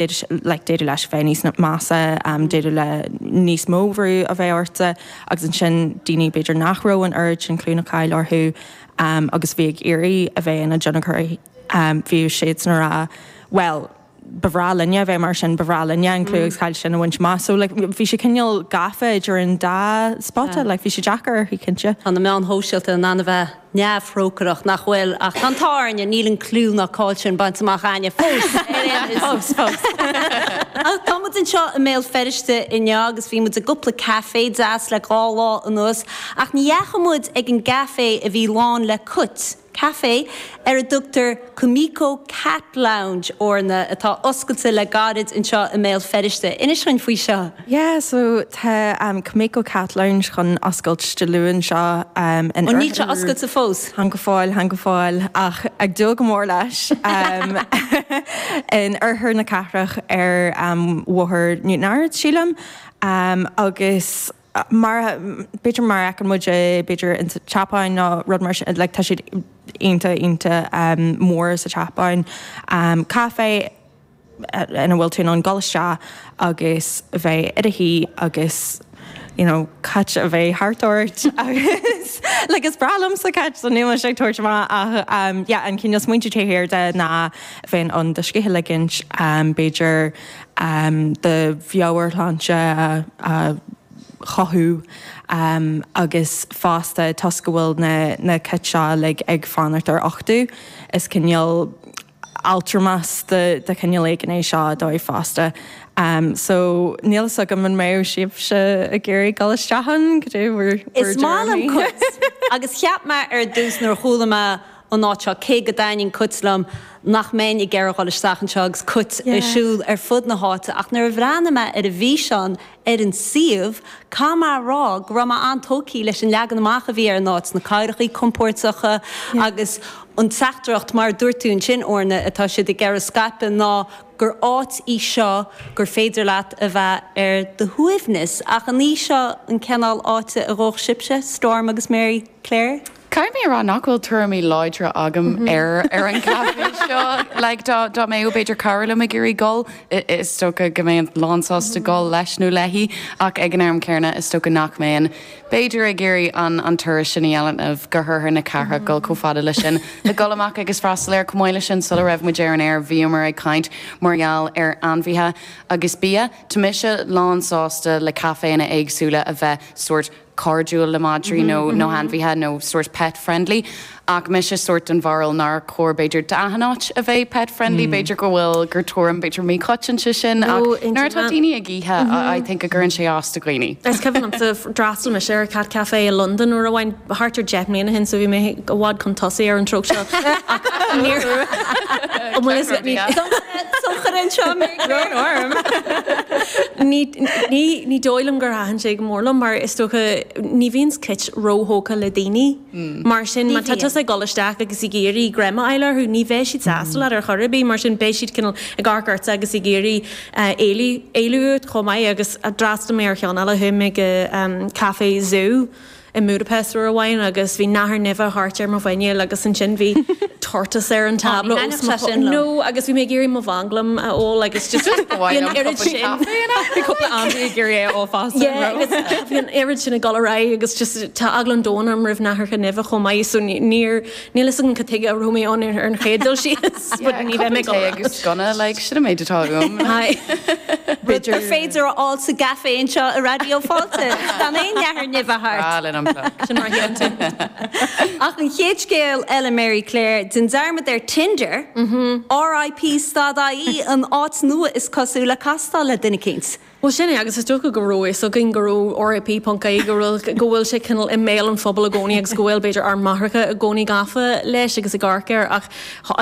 like d'fhéadfadh leis bheith níos measa um d'fhéadfadh le níos mó brú a bheith orthu agus ansin daoine b'fhéidir nach raibh an oiread sin clú ná cáil orthu um agus bhí ag iarraidh a bheith ina deontóirí um bhí siadsan ag rá bhuel ba bhreá linne a bheith mar sin ba bhreá linne an clú agus cáil sin a bhaint amach so like bhí sé cineál gafa idir an dá spota like bhí sé deacair orthu cinnte. Tá na meáin shóisialta in ann a bheith. neamhthrócaireach nach bhfuil ach an tábhairne níl an clú ná cáil sin bainte amach ag éinne fós ar aon nós. Fós, fós. Ach tá muid anseo i mBéal Feirste inniu agus bhí muid i gcúpla café deas le dhá lá anuas ach ní dheachaigh muid ag an gcafé a bhí lán le cait, café ar a dtugtar. Kumiko Cat Lounge, Orna atá oscailte le gairid anseo i mBéal Feirste. Inis dúinn faoi seo. Yeah so tá Kumiko Cat Lounge chun oscailt Dé Luain seo in. Ó níl sé oscailte fós? Chan go fóill, chan go fóill ach ag dúil go mór leis. In oirthear na cathrach ar Bhóthar Newtownards sílim agus. mar a, b'fhéidir mar a fheiceann muid é, b'fhéidir in sa tSeapáin nó rud mar sin, like tá siad iontach, iontach mór sa tSeapáin, caifé ina bhfuil tú in ann dul isteach agus bheith i do shuí agus you know cait a bheith thart ort agus like is breá liomsa cait so níl mise ag tabhairt amach ach yeah an cineál smaointe taobh thiar de ná bheith in ann do scíth a ligint b'fhéidir do mheabhairshláinte a chothú agus fosta toisc go bhfuil na cait seo uilig ag fanacht ar uchtú, is cineál altramas de chineál éigin é seo dóibh fosta. So níl a fhios agam an mbeadh sibhse ag iarraidh dul isteach ann, goidé bhur dtuairimí? Is maith liom cait agus cheap mé ar dtús nuair a chuala mé faoin áit seo, cé go dtaitníonn cait liom, nach mbeinn ag iarraidh a dhul isteach anseo agus cait ag siúl ar fud na háite ach nuair a bhreathnaigh mé ar an bhfíseán ar an suíomh, caithfidh mé a rá go raibh mé an-tógtha leis an leagan amach a bhí ar an áit, na cathaoireachaí compóirteacha agus an teachtaireacht, mar a dúirt tú ansin Orna, atá siad ag iarraidh scaipeadh ná gur áit í seo gur féidir leat a bheith ar do shuaimhneas. Ach an í seo an cineál áite a ngabhfadh sibhse, Storm agus Mary Clare? Caithfidh mé a rá nach bhfuil tuairimí láidre agam ar an gcaifé seo. Like, dá mbeadh, b'fhéidir, cara liom ag iarraidh gol, is dócha go mbeinn lánsásta gol leis nó léi, ach ag an am céanna, is dócha nach mbeinn, b'fhéidir, ag iarraidh an turas sin a dhéanamh go hoirthear na cathrach, gol chomh fada leis sin, le gol amach agus freastal air. Chomh maith leis sin, sula raibh muid ar an aer, bhíomar ag caint mar gheall ar ainmhithe agus bia. Tá mise lánsásta le caiféanna éagsúla a bheith sórt. cairdiúil le madraí nó ainmhithe nó sórt pet friendly ach mise sórt den bharúil nár chóir b'fhéidir d'achan áit a bheith pet friendly b'fhéidir go bhfuil gur tuairim b'fhéidir míchoitianta sin ach nuair atá daoine ag ithe I think go gcuireann sé as do dhaoine. Is cuimhin liomsa d'fhreastail mise ar cat café i Londain uair amháin thart ar deich mbliana ó shin so bhí mé i bhfad chun tosaigh ar an tróp seo ach níor bhuel is ní Socair anseo mé grón orm. Ní dóigh liom gur thaitin sé go mór liom mar is dócha ní bhíonn cit róthógtha le daoine mar sin má tá tusa ag dul isteach agus ag iarraidh greim a fháil orthu ní bheidh siad sásta leat ar chor ar bith mar sin beidh siad cineál ag amharc ortsa agus ag iarraidh éalú uait chomh maith agus d'fhreastail mé ar cheann eile chuaigh mé go Café Zoo i mBudapest uair amháin agus bhí nathair nimhe thart ar mo mhuineál agus ansin bhí tortoise ar an tábla os mo chomhair no agus bhí mé ag iarraidh mo mhanglam a ól agus just bhí an oiread sin bhí cúpla am ag iarraidh é a ól fast yeah agus bhí an oiread sin ag dul ar aghaidh agus just tá eagla an domhain orm roimh nathair nimhe chomh maith so níor Níl a fhios agam cad tuige a raibh mé ann ar an chéad dul síos, but ní bheidh mé ag obair. Cuppa tae agus sconna, like, sin an méid atá uaim. Rud gur féidir a fháil sa gcafé anseo i Raidió Fáilte, gan aon nathair nimhe thart. Breá linn an plug. Sin mar a dhéanann tú. Ach an chéad scéal eile, Mary Claire, déan dearmad ar Tinder, RIP dot IE, an áit nua is cosúil le castáil le duine eicínt. Bhuel, sin é, agus is dócha go raibh a fhios againn go raibh RIP ponc IE, go raibh, go bhfuil sé cineál i mbéal an phobail i gcónaí agus go bhfuil, b'fhéidir, ár máithreacha i gcónaí gafa leis agus ag amharc air ach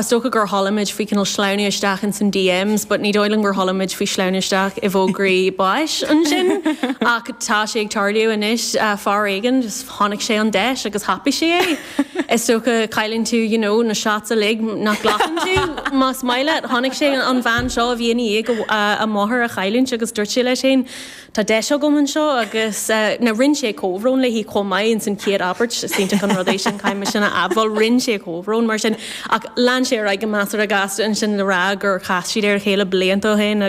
is dócha go labhraímid faoi cineál sleamhnú isteach ins an DMs but ní dóigh liom gur shamhlaímid faoi shleamhnú isteach i bhfógraí báis ansin ach tá sé ag tarlú anois, fear éigin, just tháinig sé an deis agus thapaigh sé é. Is dócha, cailleann tú, you know, na shots uilig nach nglacann tú, más maith leat. Chonaic sé an bhean seo a bhí i ndiaidh a máthair a chailliúint agus dúirt sé leis féin, tá deis agam anseo agus, eh, now rinne sé comhbhrón léi chomh maith ins an chéad abairt, is tábhachtach an rud é sin, caithfidh mé sin a admháil, rinne sé comhbhrón mar sin ach lean sé ar aghaidh go measartha gasta ansin le rá gur chas siad ar a chéile blianta ó shin agus.